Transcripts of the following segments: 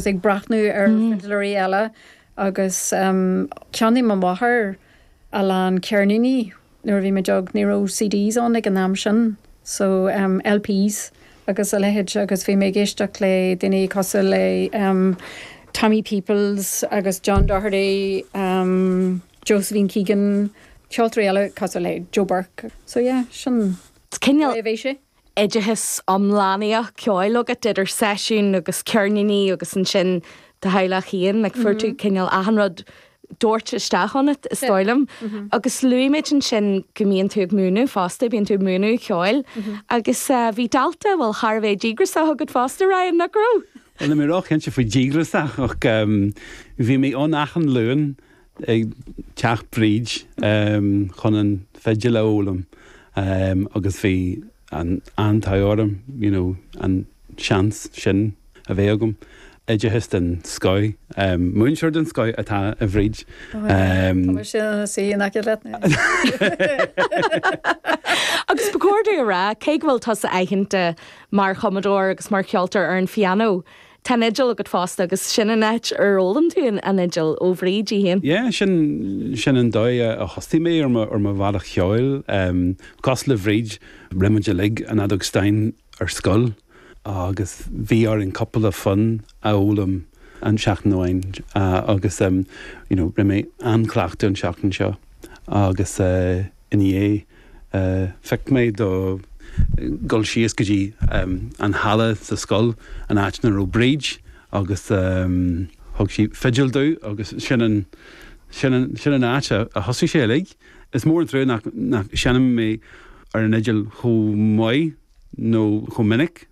is ag breathnú ar fidléirí eile agus cheannaigh mo mháthair a lán ceirníní nuair a bhí muid óg, ní raibh CDs ann ag an am sin so LPs agus a leithéid agus bhí mé ag éisteacht le daoine cosúil le Tommy Peoples agus John Doherty, Josephine Keegan, ceoltóirí eile cosúil le Joe Burke so yeah sin an dóigh a bhí sé. oideachas iomlánaíoch ceoil agat idir seisiúin agus ceirníní agus ansin do theaghlach féin, like fuair tú cineál achan rud doirte isteach ionat is dóigh liom. Agus luaigh muid ansin go mbíonn tú ag múineadh fosta, bíonn tú ag múineadh ceoil agus bhí dalta, bhuel, thar a bheith díograsach agat fosta, Ryan, nach raibh? Bhuel, níl mé ró-chinnte faoi díograsach ach bhí mé ann achan Luan. ag teach Bhríd chun an fhidil a fhoghlaim agus bhí an t-ádh orm you know an seans sin a bheith agam. Oideachas den scoth, múinteoir den scoth atá i mBríd. Tá mise ina suí in aice leat anois. Agus ba chóir domh a rá, cé go bhfuil tusa aitheanta mar chumadóir agus mar cheoltóir ar an phianó, Tá an fhidil agat fosta agus sin an áit ar fhoghlaim tú an fhidil ó Bhríd í féin. Yeah, sin, sin an dóigh a thosaigh mé ar mo, ar mo bhealach cheoil. Cosúil le Bríd, rinne muid uilig an fheadóg stáin ar scoil agus bhí orainn cupla fonn a fhoghlaim an tseachtain amháin agus, you know, ní raibh mé ag cleachtadh an tseachtain seo agus eh, In áit, phioc mé le dhul síos go dtí an halla sa scoil, an áit ina raibh Bríd agus thug sí fidil domh agus sin an, sin an, sin an áit a thosaigh sé uilig. Is mór an trua nach, nach seinneann mé ar an fhidil chomh maith nó chomh minic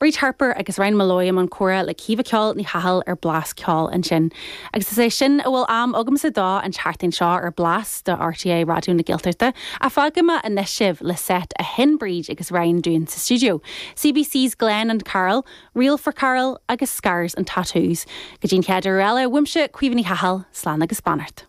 Bríd Harper agus Ryan Molloy i mbun comhrá le Caoimhe 'Ceoil' Ní Chathail ar Blas Ceoil ansin. Agus is é sin a bhfuil am agamsa dó an tseachtain seo ar Blas do RTÉ Raidió na Gaeltachta ach fágfaidh mé anois sibh le seit a sheinn Bríd agus Ryan dúinn sa stiúideo, CBC's Glen and Carol, Reel for Carl agus Scars and Tattoos. Go dtí an chéad uair eile, uaimse, Caoimhe Ní Chathail, slán agus beannacht.